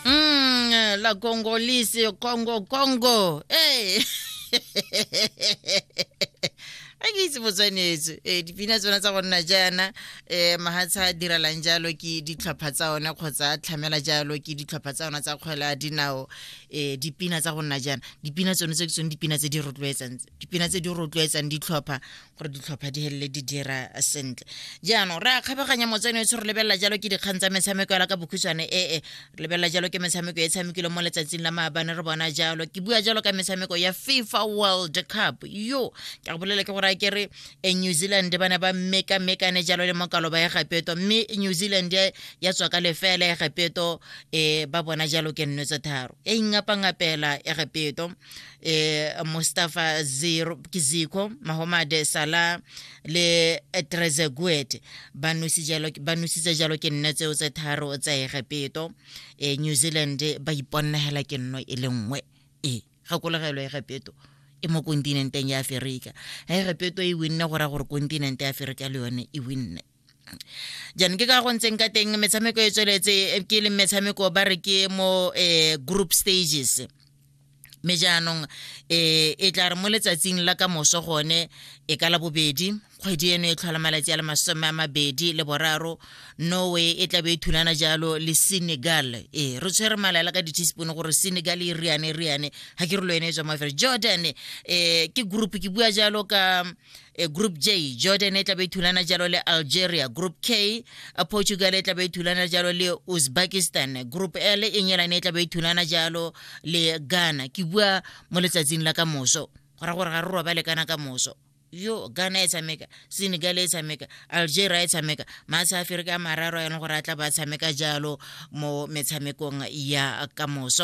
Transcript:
Mm, la Congolese, Congo, Congo. Hey. a ke itse botswanetso ee dipina tsona tsa go nna jaana um mahatsha a diralang jalo ke ditlhopha tsa one kgotsa a tlhamela jalo ke ditlhopha tsa ona tsa kgwele a dinao um dipina tsa go nna jaana dipina tsone tse ke tsone dipina tse di rotloetsang tse dipina tse di rotloetsang ditlhopha gore ditlhopha di helele di dira sentle jaanong re a kgabaganya motsene o tse re lebelela jalo ke dikgang tsa metshameko yala ka bokhutshwane ee re lebelela jalo ke metshameko e tshamekile mo letsatsing la maabane re bona jalo ke bua jalo ka metshameko ya fifa world cup yo ke go bolela ke gore a kere e new zealand ba ne ba mekamekane jalo le mokalo ba ya gapeto mme new zealand ya tswa ka lefela ya gapeto um ba bona jalo ke nno tse tharo e ingapangapela ya gapeto e Mustafa Zero Kiziko Mahomade Salah le Trezeguet ba nusitse jalo ke nne tseo tse tharo tsa Egepeto e New Zealand ba iponnegela ke nno e le nngwe e gakologelwa Egepeto e mo kontinenteng ya Aferika Egepeto e winne go ra gore kontinente ya Aferika le yone e winne jaanong ke ka go ntseng ka teng metshameko e tsweletse eh, ke leng metshameko ba re ke mo eh, group stages mme jaanong eh, e tla re mo letsatsing la ka moso gone e ka la bobedi kgwedi eno e tlhola malatsi a le masome a mabedi le boraro norway e tlabe e thulana jalo le senegal ee re tshwere malaela ka di-teaspoon gore senegal e riane riane ga ke re lo ene e tswa mafere jordan um ke group ke bua jalo ka e group j jordan e tla be thulana jalo le algeria group k portugal e tla be thulana jalo le uzbekistan group l e nyelane e tla be thulana jalo le ghana ke bua mo letsatsing la ka moso go ra gore ga re robale kana ka moso yo ghana e tshameka senegal e tshameka algeria e tshameka maaseaferika a mararo yana gore a tla ba tshameka jalo mo metshamekong ya ka moso